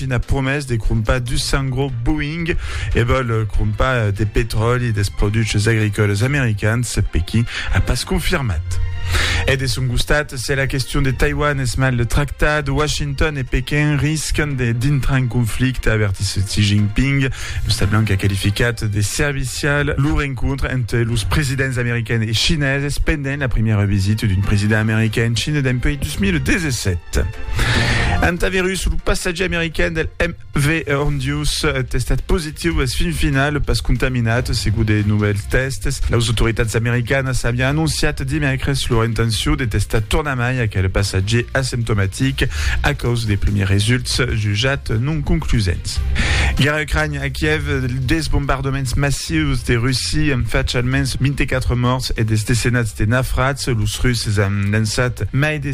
Putin a promés de crompar dus cents gros Boeing e vòl crompar de petròli dels produchs agricòlas americans, Pequin a pas confirmat. E de son costat, se la question de Taiwan es mal tractat, Washington e Pequin riscan de dintrar en conflicte, avertís Xi Jinping. L'Ostat Blanc a qualificat de servicial lo rencontre entre los presidents americains e chineses pendent la primièra visita d'un president americain en China dempuèi 2017. Antavirus, le passatge américain del MV Hondius est testat positiu es fin final pas contaminat, segut de nouvelles tests. Les autoritats americanas avián annonciat dimècres leur intenció de testar tornamai aquel passatger asymptomatic a causa de premiers results jutjats non conclusents. Guerra Ucrània a Kiev, des bombardaments massius de Russie an fach almens 24 mòrts e des decenats de nafrats. Los Russes an lançat mai de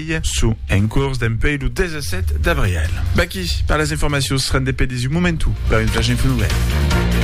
Marselh. Su en cors dempuèi lo 17 d'abrièl. V'aquí per las informacions rendepedi's un momentu per un flash info novèl.